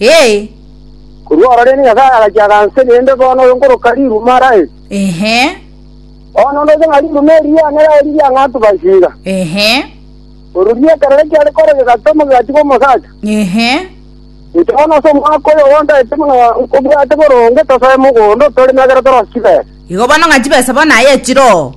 Ee. Korwa oro rende Nyasae agachia aganse, naende bono oyo nkoroka riruma Raheli. Ehe. Bono ndoche ng'a riruma eri riane Raheli riang'antu Bathsheba. Ehe. Orori ekerore kiare kore gegatwa omogati bw'omosacha. Ehe. Inche bono ase omwaka oyo ogo ntaete buna nkobwate boronge tosoe mogondo, toreme ekero torosibe. Igo bono ng'a chibesa bono aye chire oo.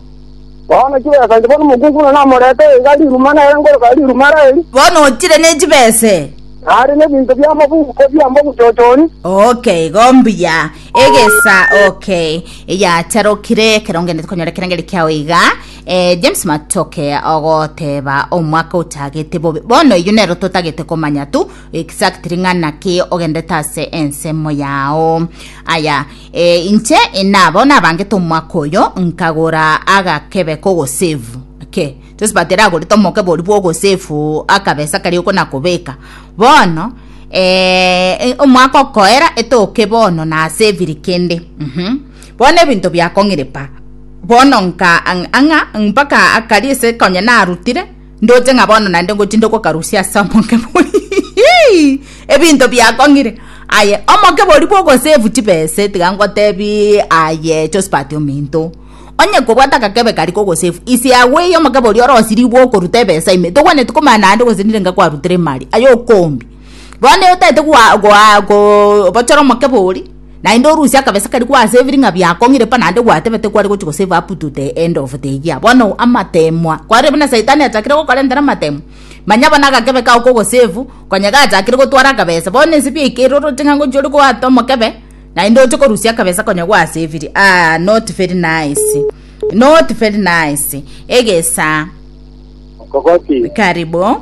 Bono chibesa inche bono omokungu buna namorete iga riruma nere nkoroka riruma rairi. Bono ochire ne chibese. Nare nebinto bi'amabuko biamba obochochori. Okay, igo mbuya. Egesa okay. Eyacharokire ekero ngendete konyora ekerengeri kiao iga. Eh, James Matoke ogoteba omwaka ochagete bobe. Bono eyio nero totagete komanya tu exactly ng'a naki ogendete ase ensemo yao. Aya, Ee, inche nabo nabangete omwaka oyo, nkagora agakebe k'ogosevu ke Josephat ere agorete omokebe oria bw'ogosevu akabesa karia okonakobeka bono ee, omwaka okoera etoke bono naseviri kende mhm bono ebinto biakong'iripa bono nka ang'a mpaka akari ase konya narutire Ndoche ng'a bono naende ngochia ndogokarusia ase omokebori ebinto biakong'ire. Aye, omokebori bw'ogosevu chibese, tiga ngotebie aye Josphat ominto. Onye kobwate agakebe karia k'ogosevu, ise yago eye omokebori ore osirie gwokoruta ebesa ime, togwenereti komanya naende gose nire inga kwarutire ime aria, aye okombi. Bono otete goa goa gobochora omokebori. Naende orusie akabesa karia gwa ase ebiring'a biao kong'ire pa naende gwatebete kware gochia gosave up to the end of the year. Bono amateemwa kware buna Saitani achakire gokorentera amateemwa. Manya bono agakebe kao kogosave, konya gachakire gotwara akabesa. Bono inse biaikire oroche ng'a ngochia ore goata omokebe naende oche korusia akabesa konya gwasaviri. Aah not very nice. Not very nice. Egesaa. Okogoti. Karibu.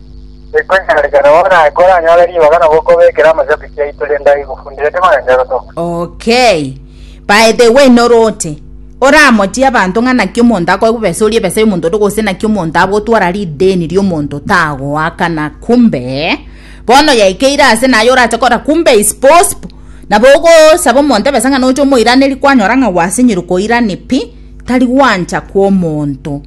Ekonyarekana oo naye koranyore ribaga na gokobekera amashabiki aito rende aigufundire timarengerwe toka. Okay. By the way noroche. Oramochie abanto ng'a naki omonto akoe bobesa orie besa y'omonto onde gose naki omonto agotwara rideni ri'omonto tagoakana kumbe bono yaikeire ase naye orache kora kumbe is possible nabo ogosaba omonto ebesa ng'a noche omoiranerie kwanyora ng'a gwasinyire koirani pi tari gwancha kw'omonto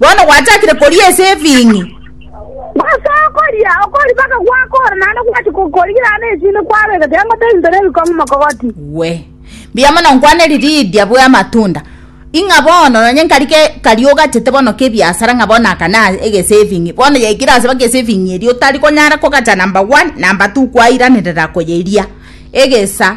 Bono gwachakire koria ase efing'i. Gose okoria, okoria mpaka gwakoora, naende gwacha gokorigerana esini kwabeka kiango tebinto nebikong'u mokogoti. Gwe. Mbuya mono nkwaneri Lidia bw'amatunda. Ing'a bono nonye nkari ke kari ogachete bono kebiasara ng'a bono aka na egesaving. Bono yaikire ase baka esaving eria otari konyara kogacha number one, number two kwairanerera koyeria. Egesa.